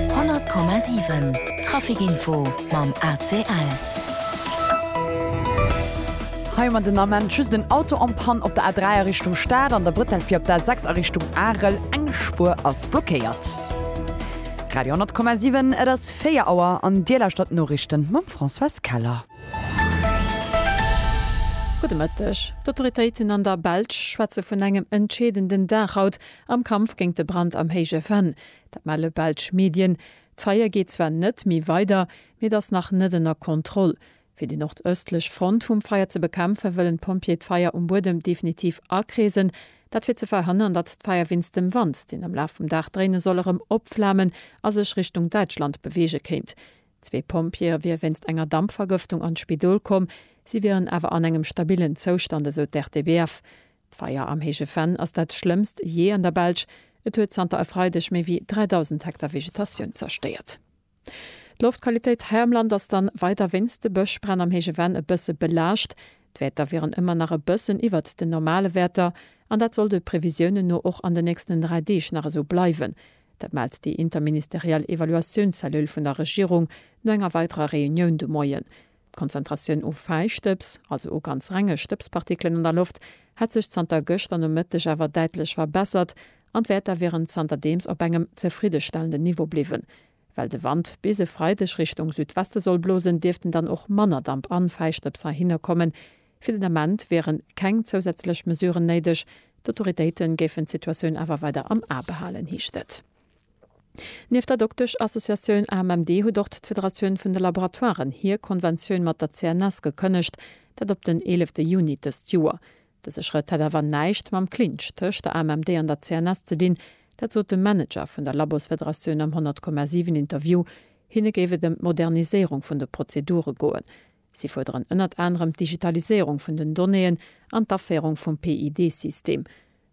100,7 Trafic Info mam ACL. Hei man den Ament just en Auto en Panne op der A3 a Richtung Stad an der Bretelle fir op der A6 a Richtung Arel. Eng Spuer ass blockéiert. Radio 10,7 Et ass 4 Auer an Dir lauschtert d'Noriichten mam Françoise Keller. Gudde Mëtteg. D'Autoritéiten an der Belsch schwätze vun engem entscheedenden Dag haut, Am Kampf géint de Brand am Héije Venn, dat melle belsch Medien. D'Feier geet zwar net méi weider, mee et ass nach net ënner Kontroll. Fir déi nordëstlech Front vum Feier ze bekämpfen, wëllen d'Pompjeeë d'Feier um Buedem definitiv akreesen. Dat fir ze verhënnern, datt d'Feier wéinst dem Wand, deen am Laf vum Dag dréine soll, erëm opflamen a sech Richtung Däitschland beweege kéint. Zwee Pompjeeë wiere wéinst enger Dampvergëftung an d'Spidol komm, si wieren awer an engem stabillen Zoustand, esou d'RTBF. D'Feier am Héije Venn ass dat schlëmmst jee an der Belsch. Et huet zanter e Freideg méi wéi 3.000 Hektar Vegetatioun zerstéiert. D'Loftqualitéit hei am Land ass dann weider wéinst de Bëschbränn am Héije Venn e bësse belaascht. D'Wäerter wieren ëmmer nach e bëssen iwwert den normale Wäerter an dat soll de Previsiounen no och an den nächsten 3 Deeg nach esou bleiwen. Dat mellt déi interministeriell Evaluatiounscellule vun der Regierung no enger weiderer Reunioun de Moien. D'Konzentratioun u Fäistëbs, also u ganz renge Stëbspartikelen an der Loft, hätt sech zanter gëschter Nomëtteg awer däitlech verbessert an d'Wäerter wieren zanterdeems op engem zefriddestellenden Niveau bliwwen. Well de Wand bis e Freideg Richtung Südweste soll blosen, dierften dann och manner Damp an Fäistëbs heihinner kommen. Fir den Ament wieren keng zousätzlech Mesuren néideg. D'Autoritéiten géifen d'Situatioun awer weider am A behalen, heescht et. Nieft der Dokteschassociatioun AMMD huet och d'Federatioun vun de Laboratoiren hir Konventioun mat der CNS gekënnegt, dat op den eelefte Juni dëst Joer. Dëse Schrëtt hätt awer näischt mam Clinch tëscht der AMMD an der CNS ze dinn, dat sot de Manager vun der Labosfederatioun am 100, 7 Interview. Hinne géif et ëm d'Moderniséierung vun de Prozedure goen. Si fuerderen ënnert anerem d'Digitaliséierung vun den Donnéeën an d'Aféierung vum PID-System.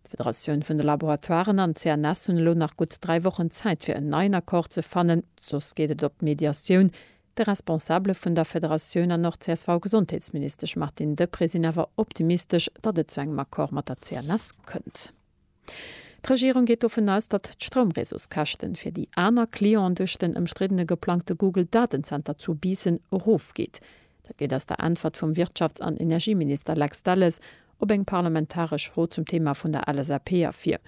D'Federatioun vun de Laboratoiren an d'CNS hunn elo nach gutt dräi Wochen Zäit fir en neien Accord ze fannen, soss geet et op d'Mediatioun. De Responsabele vun der Federatioun an och CSV-Gesondheetsministesch Martine Deprez sinn awer optimistesch, datt et zu engem Accord mat der CNS kënnt. D'Regierung geet dovun aus, datt d'Stroumreseauskäschten fir déi aner Clienten duerch den ëmstriddene geplangte Google-Datenzenter zu Biissen erofgeet. Dat geet aus der Äntwert vum Wirtschafts an Energieminister Lex Delles op eng parlamentaresch Fro zum Thema vun der LSAP ervir.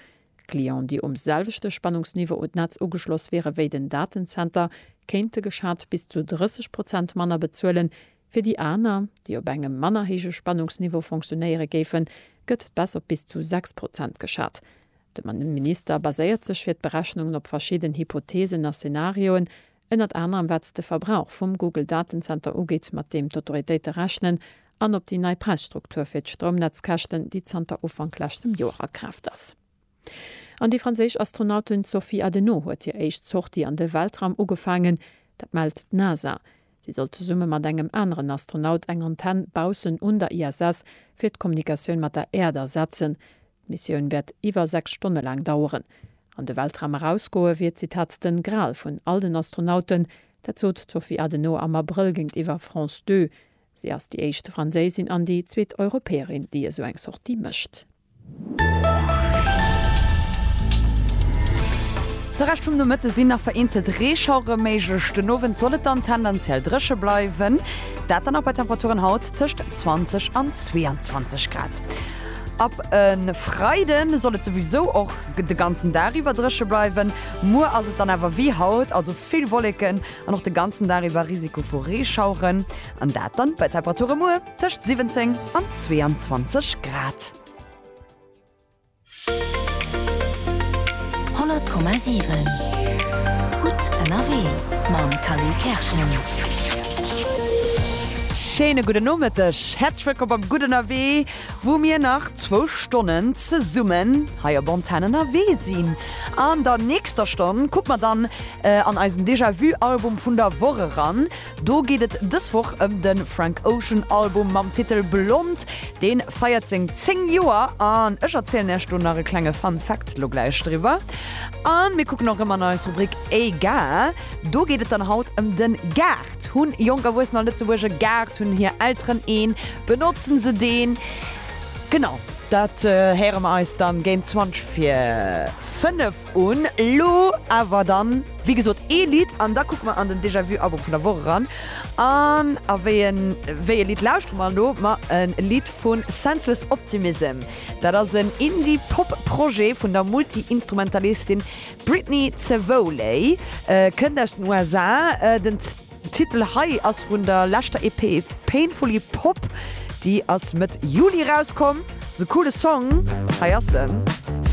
Clienten, déi um selwechte Spannungsniveau un d'Netz ugeschloss wiere wéi den Datenzenter, kéinte geschat bis zu 30 Prozent manner bezuelen. Fir déi aner, déi op engem manner héije Spannungsniveau fonctionéiere géifen, gëtt d'Baisse op bis zu 6 Prozent geschat. De Minister baséiert sech fir d'Berechnungen op verschidden Hypotheesen a Szenarioen, ënnert anerem wat s de Verbrauch vum Google Datenzenter ugeet, mat deem d'Autoritéite rechnen, an op déi nei Präisstruktur fir d'Stroumnetzkäschten, déi zanter Ufank leschtem Joer a Kraaft ass. An déi franséisch Astronautin Sophie Adenau huet hir éischt Sortie an de Weltraum ugefaangen. Dat mellt d'NASA. Si soll zesumme mat engem aneren Astronaut eng Antenn baussen un der ISS fir d'Kommunikatioun mat der Äerd ersetzen. D'Missioun wäert iwwer 6 Stonne laang daueren. An de Weltraum erausgoe wier, Zitat, den Gral vun all den Astronauten. Dat sot d'Sophie Adenau am Abrëll géintiwwer France Deux. Si ass déi éischt Franséisin an déi zweet Europäerin, déi esou eng Sortie mécht. De Rescht vum Nomëtte sinn nach vereenzelt Reeschauere méiglech, den Owend soll et dann tendenziell dréche bleiwen, dat dann och bei Temperaturen haut tëscht 20 an 22 Grad. Ab e Freide soll et souwisou och de ganzen Dag iwwer dréche bleiwen. Muer ass et dann awer wéi haut, also vill Wolleken an och de ganzen Dag iwwer Risiko vu Reeschaueren. An dat dann bei Temperature muer tëscht 17 an 22 Grad. Honnert Komma siwen Gutt ënnerwee mam Kally Kerschen. Schéine gudden Nomëtteg. Häerzlech wëllkomm beim Gutt Ënnerwee, wou mir nach zwou Stonnen zesummen hei op Antenn ënnerwee sinn. An der nächster Stonn kucke mer dann an eisen Déjà-vu-Album vun der Woch eran. Do geet et dës Woch ëm de Frank Ocean Album mam Titel Blond. Dee feiert seng 10 Joer an ech erzielen Iech do nach e klenge Fun Fact lo gläich driwwer. A mir kucken och erëm an eis Rubrik Egal. Do geet et dann haut ëm den Gaart. Hunn jonk Erwuessener an Lëtzebuerg e Gaart? Hunn hir Elteren een? Benotzen se deen? Genau dat héiere mer eis dann géint 20 fir 5 un. Lo awer dann, wéi gesot, ee Lidd an da kucke mer an den Déjà-vu-Album vun der Woch eran. An a wéi en, wéi e Lidd lauschtere mer elo? Ma e Lidd vu Senseless Optimism. Dat ass en Indie-Pop-Projet vun der Multi-Instrumentalistin Brittany Cevoli kënnt aus den USA. Den Titel hei ass vun der leschter EP Painfully Pop, déi ass Mëtt Juli erauskomm. Ass e coole Song, hei ass en.